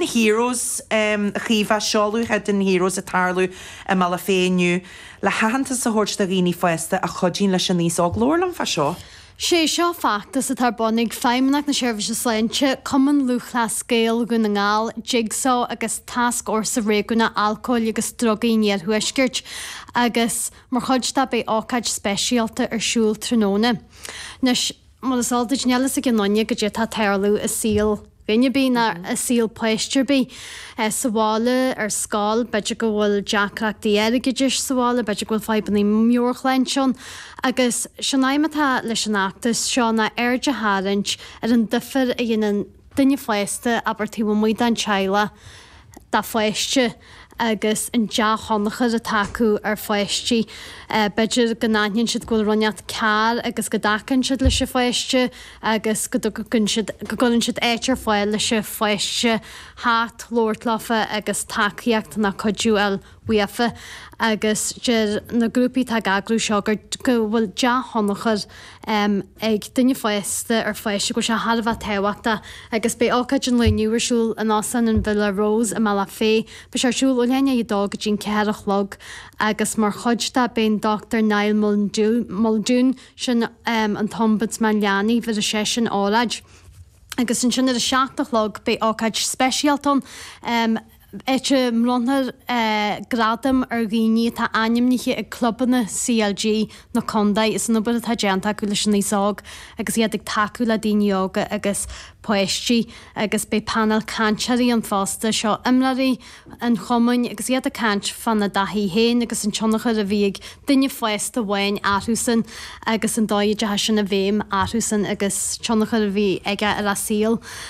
na heroes a Chaoimhe seoladh Hidden Heroes ag tarlú i mBealach Féich inniu le haitheantas a thabhairt do dhaoine fásta a chuidíonn leis an aos óg labhair liom fá seo. Sé seo feachtas atá ar bun ag Feidhmeannacht na Seirbhíse Sláinte, Cumann Lúthchleas Gael Dhún na nGall, Jigsaw agus Tascfhórsa Réigiúnach Alcóil agus Drugaí an Iarthuaiscirt agus mar chuid de beidh ócáid speisialta ar siúl tráthnóna. Mar is eol duit, níl fhios ag aon duine goidé atá ag tarlú i saol duine ar bith, ná i saol páiste ar bith. Sa bhaile, ar scoil, b'fhéidir go bhfuil deacrachtaí airgeadais sa bhaile, b'fhéidir go bhfuil fadhbanna meabhairshláinte ann, agus sé'n aidhm atá leis an fheachtas seo ná aird a tharraingt ar an duifear a dhéanann duine fásta, abair, taobh amuigh den teaghlach, do pháiste agus an dea-thionchar atá acu ar pháistí. B'fhéidir go n-aithníonn siad go bhfuil rud inteacht cearr agus go dtacaíonn siad leis an pháiste agus go dtugann siad, go gcuireann siad áit ar fáil leis an pháiste theacht, labhairt leofa agus tacaíocht ná cuidiú a fháil. uafa, agus deir na grúpaí atá ag eagrú seo gur go bhfuil dea-thionchar ag duine fásta ar pháiste, go bhfuil sé thar a bheith tábhachtach. Agus beidh ócáid an lae inniu ar siúl in Óstán an Villa Rose i mBealach Féich. Beidh sé ar siúl ó leath i ndiaidh a dó go dtí an ceathair a chlog, agus mar chuid de beidh an Dr Niall Muldoon, sin an tOmbudsman Leanaí, bhéarfaidh seisean óráid. Agus ansin ar a seacht a chlog beidh ócáid speisialta ann, áit a mbronnfar gradaim ar dhaoine atá ainmnithe ag clubanna CLG na contae as an obair atá déanta acu leis an aos óg agus iad ag tacú le daoine óga agus páistí agus beidh painéal cainteoirí ann fosta. Seo imreoirí an chumainn agus iad ag caint fána dtaithí féin agus an tionchar a bhí ag duine fásta amháin orthusan agus an dóigh a dteachaigh sin i bhfeidhm orthusan agus tionchar a bhí aige ar a saol.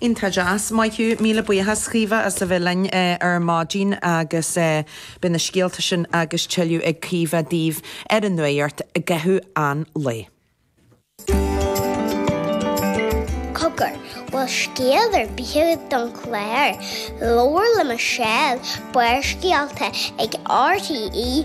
Iontach deas. Maith thú. Míle buíochas, Caoimhe, as a bheith linn ar maidin agus beidh na scéalta sin agus tuilleadh ag Caoimhe daoibh ar an nuacht i gcaitheamh an lae. Cogar, bhfuil scéal ar bith don chlár? Labhair le Michelle, Barrscéalta ag RTE.ie.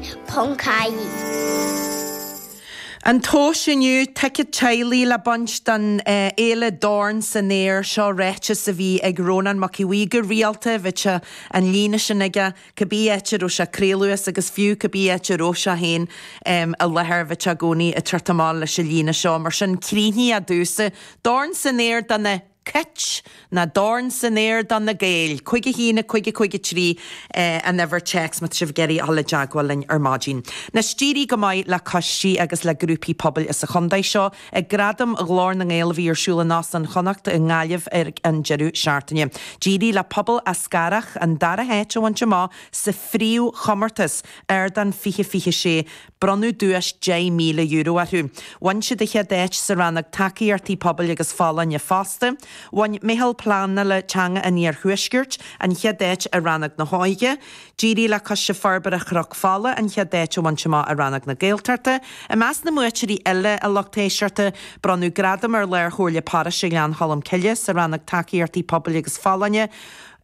An tomhas inniu, ticéad teaghlaigh le baint don fhéile Dorn san Aer, seo ráiteas a bhí ag Rónán Mac Aodh Bhuí go rialta, bhíodh an líne sin aige, cibé áit a raibh sé ag craoladh as agus fiú cibé áit a raibh sé féin i láthair, bhí sé i gcónaí ag teacht amach leis an líne seo. Mar sin, críochnaigh é domhsa, Dorn san Aer do na. Cit. ná dorn san aer do na Gaeil! Cúig a haon, cúig a cúig a trí eh an uimhir téacs má tá sibh ag iarraidh a dhul i dteagmháil linn ar maidin. Anois d'éirigh go maith le coistí agus le grúpaí pobail as an chontae seo ag Gradaim Ghlór na nGael a bhí ar siúl in Óstán Chonnacht i nGaillimh ar an deireadh seachtaine. D'éirigh le Pobal Eascarrach an dara háit a bhaint amach sa phríomhchomórtas, Ardán 2026. Bronnadh duais €10,000 orthu. Bhain siad an chéad áit sa rannóg Tacaíochtaí Pobail agus Folláine fosta. Bhain Meitheal Pleanála Teanga an Iarthuaiscirt an chéad áit i rannóg na hÓige. D'éirigh le Coiste Forbartha Chnoc Fola an chéad áit a bhaint amach i rannóg na Gaeltachta. I measc na mbuaiteoirí eile a lucht éisteachta, bronnadh Gradam ar Lárchomhairle Paróiste Ghleann Cholm Cille sa rannóg Tacaíochtaí Pobail agus Folláine,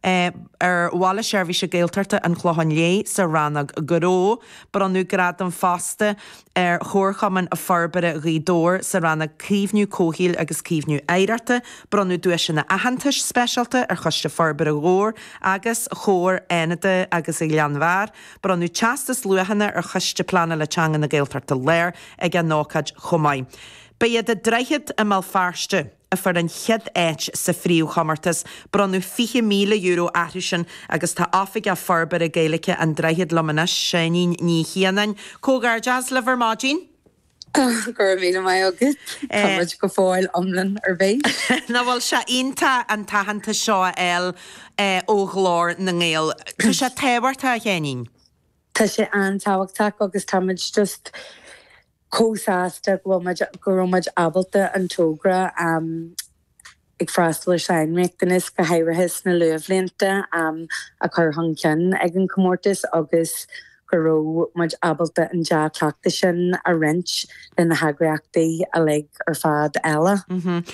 ar Bhaile Seirbhíse Gaeltachta an Chlocháin Léith sa rannóg Gnó, Bronnadh gradam fosta ar Chomharchumann Forbartha Ghaoth Dobhair sa rannóg 'Caomhnú Comhshaoil agus Caomhnú Oidhreachta', bronnadh duaiseanna aitheantais speisialta ar Choiste Forbartha Dhobhair agus Chomhar Fhánada agus an Ghleann Bhairr, bronnadh teastas luachanna ar Choiste Pleanála Teanga na Gaeltachta Láir ag an ócáid chomh maith. Ba iad An Droichead i mBéal Feirste, a fuair an chéad áit sa phríomhchomórtas. Bronnadh €20,000 orthusan agus tá Oifigeach Forbartha Gaeilge An Droichead liom anois, Seáinín Ní Chianáin. Comhghairdeas libh ar maidin! Go raibh míle maith agat! Tá muid go fóill iomlán ar bís. Nach bhfuil sé iontach an t-aitheantas seo a fháil ó Ghlór na nGael? Tá sé tábhachtach, a Sheáinín. Tá sé an-tábhachtach agus tá muid just chomh sásta go bhfuil muid, go raibh muid ábalta an togra ag freastal ar sainriachtanais, go háirithe sna luathbhlianta, a chur chun cinn ag an chomórtas agus go raibh muid ábalta an dea-chleachtadh sin a roinnt lena heagraíochtaí uilig ar fad eile.